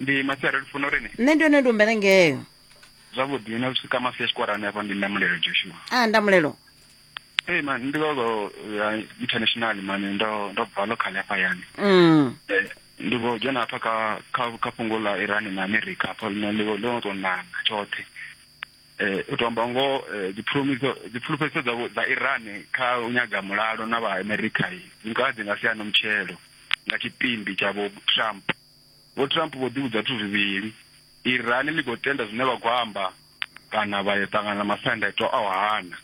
ndi masiari lufuno rini nṋe ndi one ndi umbele ngeyo zwavhuḓi na zwi swika mafia tshikorani hafha ndi ndamulelo joshua a ah, ndamulelo Hey man, ndi gogo ya uh, international man ndo ndo bva local hafha yani. Mm. Eh, ndi go dzhena hafha kha kha kha fhungo ḽa Iran na America hafha ḽine ḽi ḽo to nana tshoṱhe. Eh, u to amba ngoho eh, dipfulumiso dipfulufhedziso dzavho dza iran kha u nyaga mulalo na vha america i nga dzi nga siana mutshelo nga tshipimbi tsha vho trump vho trump vho ḓivhudza zwithu zwivhili iran ḽi khou tenda zwine vha khou amba kana vha ya ṱangana na masiandaitwa a u hana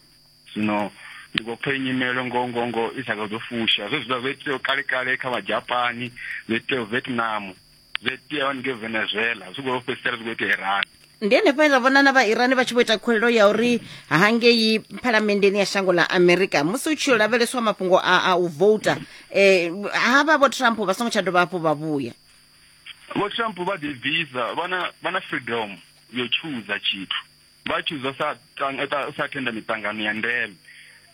zwino ndi khou pfa inyimelo ngoho ngoho ngoho i sa kha dzo fusha zwe zwiḽa zwo itea kale kale kha vha japani zwo itea vietnam zwi itea hone ngei venezuela zwi khou fhedzisela zwi khou itea irani ndi henefho he ra vhona na vha irani vha tshi vho ita khuwelelo ya uri hangei phalamenndeni ya shango ḽa amerika musi u tshi yo lavheleswa mafhungo a a u vouta um ha vha vho trump vha songo tsha dovha hafhu vha vhuya vho trump vha ḓibvisa vha na vha na freedom yo chooser tshithu vha tshuza sa sa thenda miṱangano ya ndeme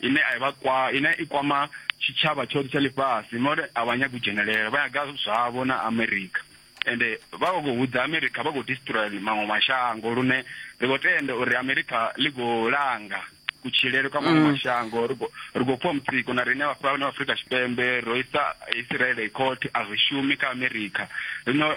ine a vha kwa ine i kwama tshitshavha tshoṱhe tsha ḽifhasi more a vha nyagi u dzhenelela vha yaga zwavho na america ende vha vha khou hudza america vha khou destroya maṅwe mashango lune ri khou tenda uri america ḽi khou langa kutshilele kwa maṅwe mm. mashango ri khou pfha mutsiko na riṋe vhafha vhane vha afurika tshipembe ro isa israele court a zwi shumi kha america rino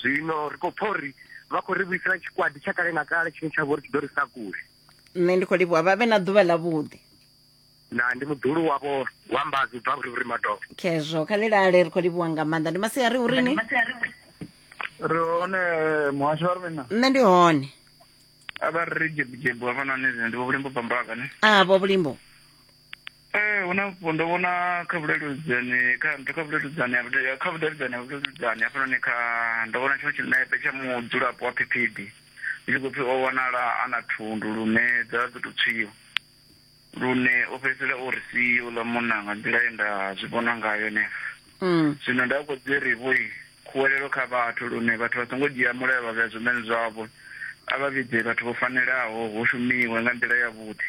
zwino ri khou pfa uri vha khou ri vhuisela tshikwadi tsha kale na kale tshine tsha vho ri tshi ḓo ri sa kule nṋe ndi khou livhuwa vha vhe na ḓuvha ḽa vhuḓi na ndi muḓulu wavho wa mbazi u bva vhurivhuri madovha khezwo kha lilale ri khou livhuwa nga maanḓa ndi masia ri urini ri hone muhasho wa ri na nṋe ndi hone a vha ri jebujebu hafhanani ndi vho vhulimbo bambaka ne a vho vhulimbo ee hu na mafhungo ndo vhona kha vhuleludedzani kha nthu kha vhuleludedzani kha vhudavhidzani ha vhuleludedzani hafhanoni kha ndo vhona tshiṅwe tshinepe tsha mudzulapo wa phiphidi ndi khou pfi o wanala a na thundu lune dza ḓo tou tswiwa lune o fhedzisela o ri si uḽa munna nga nḓila ye nda zwi vhona ngayo henefho mm. zwino nda khou dzi ri vhoi khuwelelo kha vhathu lune vhathu vha songo dzhia mulayo vha vhea zwimene zwavho a vha vhidze vhathu vho fanelaho hu shumiwe nga nḓila yavhuḓi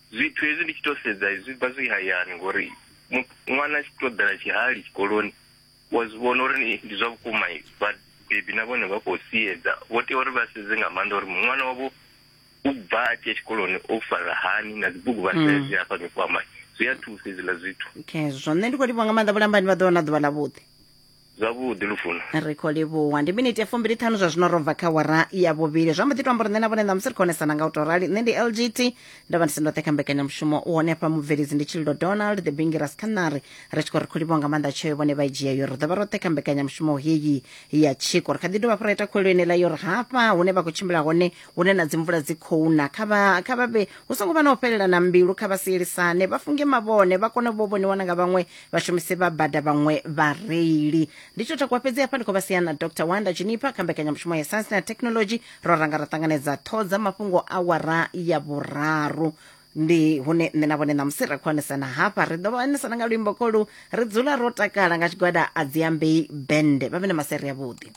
Zwithu hezwi ndi tshi to sedza zwi bva zwi hayani ngori mu- ṅwana a tshi to ḓela tshihali tshikoloni wa zwi vhona uri ni- ndi zwa vhukuma vhabebi na vhone vha khou siedza vho tea uri vha sedze nga maanḓa uri ṅwana wavho u bva a tshia tshikoloni o fara hani na dzibugu vha sedze hafha mikwama zwi a thusa hezwiḽa zwithu khezwo nṋe ndi khou livha nga maanḓa vhulambani vha ḓo wana ḓuvha ḽa vhuḓi zwavhuḓi lufuno ri khou livhuwa ndi miniti ya fumbili ṱhanu zwa zwino ro bva kha wara ya vhuvhili zwa mbo ḓi to amba uri nṋe na vhone ṋamusi ri khonesana nga u to rali nṋe ndi lgt ndo vha ndi si ndoṱhe kha mbekanyamushumo u hone hafha mubveledzi ndi tshililo donald the bingiras khanari ri tshi khou ri khou livhuwa nga maanḓa tsheo vhone vha i dzhia yo ri ḓo vha roṱhe kha mbekanyamushumo heyi ya tshiko ri kha ḓi dovha fho ra ita khuwelo yenela yo ri hafha hune vha khou tshimbila hone hune na dzimvula dzi khou na kha vha kha vha vhe hu songo vha na u fhelela na mbilu kha vha sielisane vha funge mavhone vha kone vho vhoniwa na nga vhaṅwe vhashumisi vha bada vhaṅwe vhareili ndi tsho takuwa fhedzi hafha ndi khou vha sia na dr wanda chinipa kha mbekanyamushumo ya science na technology ro ranga ra ṱanganedza ṱhoho dza mafhungo a wara ya vhuraru ndi hune nṋe na vhone ṋamusi ra khwanisana hafha ri ḓo vhanisana nga luimbo kolu ri dzula ro takala nga tshigwada a dziambei bende vha vhe na maseri avhuḓi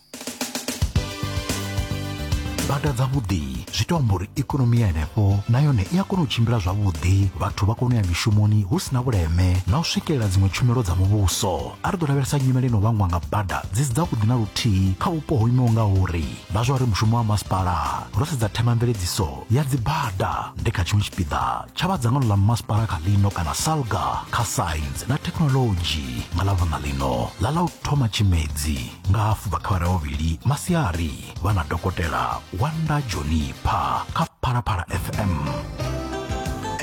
bada dzavhuḓi zwi ita amba uri ikonomi ya henefho na yone i a kona u tshimbila zwavhuḓi vhathu vha kona u ya mishumoni hu si na vhuleme na u swikelela dziṅwe tshumelo dza muvhuso a ri ḓo lavhelesa nyimele ino vhangwa nga bada dzi si dzavhuḓi na luthihi kha vhupo ho imaho nga uri vha zwa uri mushumo wa masipala ro sedza themamveledziso ya dzibada ndi kha tshiṅwe tshipiḓa tsha vha dzangano ḽa masipala kha ḽino kana salga kha science na thekhinolodzhi nga ḽa vhona ḽino ḽa ḽa u thoma tshimedzi nga hafu vha kha vhavhili masiari vha na dokotela wanda jonipa kha phalaphala fm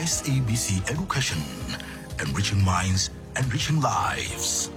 sabc education enriching minds enriching lives